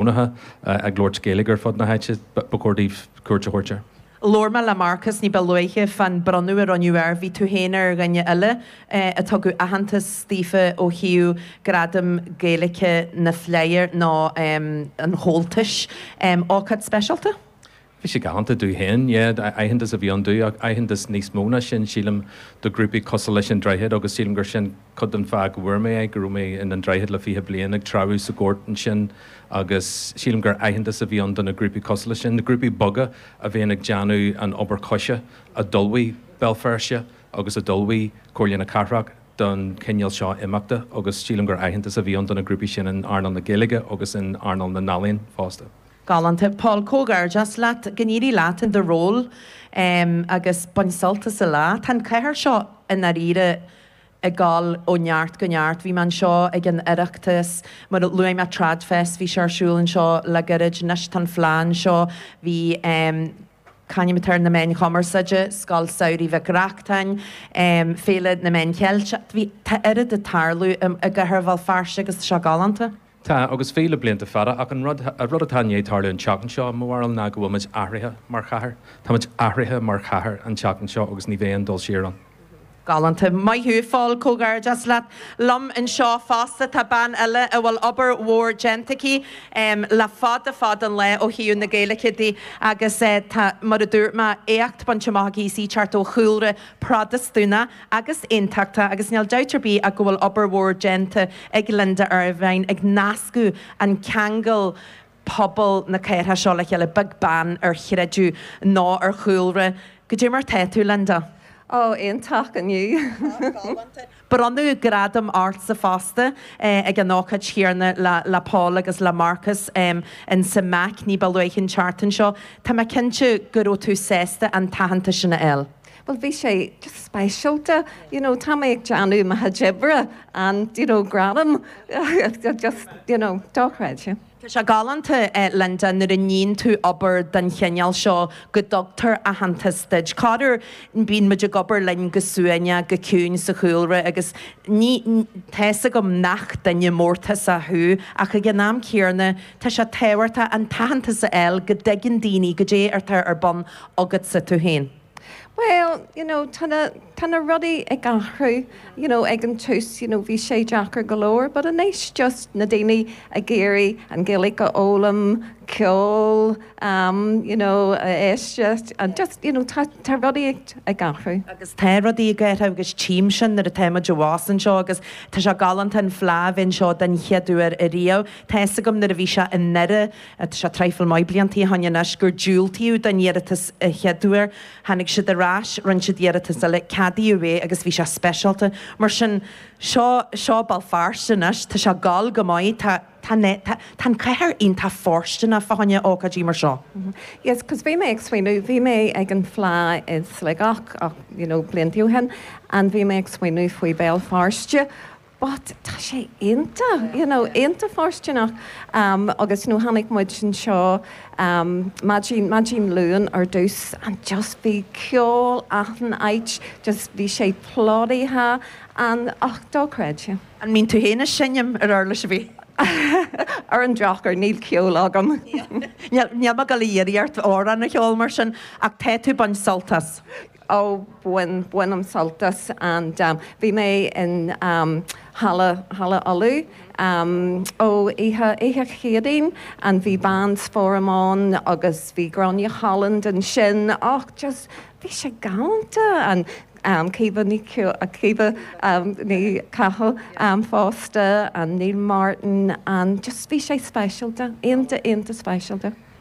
Chónaithe ag labhairt Gaeilge ar fud na háite, ba chóir daoibh cuairt a thabhairt ar. Labhair mé le Marcus ní ba luaithe fán bronnadh a rinneadh air. Bhí tú féin ar dhuine eile a tugadh aitheantas daofa ó thaobh Gradam Gaeilge na Fleidhe nó an Chomhaltais. Ócáid speisialta? Bhí sé galánta domh féin, yeah, aitheantas a bhí ann domh, ach aitheantas níos mó ná sin, sílim, do ghrúpaí cosúil leis An Droichead, agus sílim gur sin cuid den fáth go bhfuair mé é, go raibh mé in An Droichead le fiche bliain ag treabhadh sa ghort sin, agus sílim gur aitheantas a bhí ann do na grúpaí cosúil leis sin, na grúpaí beaga a bhíonn ag déanamh an obair choise a d'ullmhaigh Béal Feirste agus a d'ullmhaigh Comhairle na Cathrach don chineál seo imeachta, agus sílim gur aitheantas a bhí ann do na grúpaí sin in earnáil na Gaeilge agus in earnáil na n-ealaíon fosta. Galánta. Pól, comhghairdeas leat. Go n-éirí leat i do ról agus bain sult as an lá. Tá an chathair seo i ndáiríre ag dul ó neart go neart. Bhí mé anseo ag an Oireachtas, mar a luaigh mé, TradFest, bhí sé ar siúl anseo le gairid. Anois tá an Fleadh anseo. Bhí c'ainm atá air, na Meáin Chumarsáide, Scoil Samhraidh Mhic Reachtáin, Féile na Meán Ceilteach, bhí, tá oiread ag tarlú i gCathair Bhéal Feirste agus tá sé galánta. Tá, agus bhí le blianta fada, ach an rud atá i ndiaidh tarlú an tseachtain seo, i mo bharúil, ná go bhfuil muid athraithe mar chathair. Tá muid athraithe mar chathair an tseachtain seo agus ní bheidh aon dul siar ann. Galánta. Maith thú, a Phóil. Comhghairdeas leat. Liom anseo fosta tá bean eile a bhfuil obair mhór déanta aici le fada fada an lá ó thaobh na Gaeilge di agus tá, mar a dúirt mé, éacht bainte amach aici. Is í ag teacht ó chúlra Protastúnach. agus aontachta agus níl dabht ar bith ach go bhfuil obair mhór déanta ag Linda Ervine ag nascadh ag ceangal pobal na cathrach seo le chéile beag beann ar chreideamh ná ar chúlra. Goidé mar atá tú, Linda! Ó, iontach inniu! Bronnadh gradam ortsa fosta ag an ócáid chéanna le Pól agus le Marcus in san Mac ní ba luaithe an tseachtain seo. Tá mé cinnte go raibh tú sásta an t-aitheantas sin a fháil. Bhuel, bhí sé just speisialta. You know, tá mé ag déanamh mo chuid oibre and, d'you know, gradam, just, d'you know, dochreidte. Tá sé galánta, eh, Linda, nuair a níonn tú obair den chineál seo go dtugtar aitheantas duit. Corruair, bíonn muid ag obair linn go suaimhneach, go ciúin sa chúlra agus ní, tá fhios agam nach duine mórtasach thú ach ag an am céanna, tá sé tábhachtach an t-aitheantas a fháil go dtuigeann daoine goidé atá ar bun agatsa tú féin. Bhuel, you know, tá na, tá na rudaí ag athrú, you know, ag an tús, you know, bhí sé deacair go leor, but anois just na daoine ag iarraidh an Ghaeilge a fhoghlaim, ceol, am, you know, a éisteacht, and just, you know, tá, tá rudaí ag, ag athrú. Agus tá rudaí ag athrú agus tchím sin nuair atá muid abhus anseo agus tá sé galánta an Fhleadh a bheith anseo den chéad uair riamh. Tá fhios agam nuair a bhí sé i nDoire, Tá sé traidhfil maith blianta ó shoin anois gur diúltaíodh don iarratas an chéad uair. Tháinig siad ar ais, rinne siad iarratas eile, ceadaíodh é agus bhí sé speisialta. Mar sin, seo, seo Béal Feirste anois, tá sé ag gabháil go maith, tá, tá, tá, tá an cathair iontach fóirsteanach fá choinne ócáidí mar seo. Yes, 'cause bhí mé ag smaoineamh, bhí mé ag an Fhleadh i Sligeach ach, you know, blianta ó shin and bhí mé ag smaoineamh faoi Béal Feirste but tá sé iontach, you know, iontach fóirsteanach agus, you know, tháinig muid anseo maidin, maidin Luain ar dtús and just bhí ceol achan áit, just bhí sé plódaithe and och dochreidte. An mbíonn tú féin ag seinm ar uirlis ar bith? Ar an drochuair, níl ceol agam. Níl, níl mé ag dul a iarraidh ort amhrán a cheol mar sin ach tá tú ag baint sult as. Ó, bhain, bainim sult as and. Bhí mé in Halla, Halla Uladh, ó, oíche, oíche Chéadaoin, and bhí Beoga Foram ann, agus bhí Gráinne Holland ansin, och, just, bhí sé galánta, and Caoimhe Ní, Caoimhe Ní Chathail fosta, and Neil Martin, and just, bhí sé speisialta, iontach, iontach speisialta.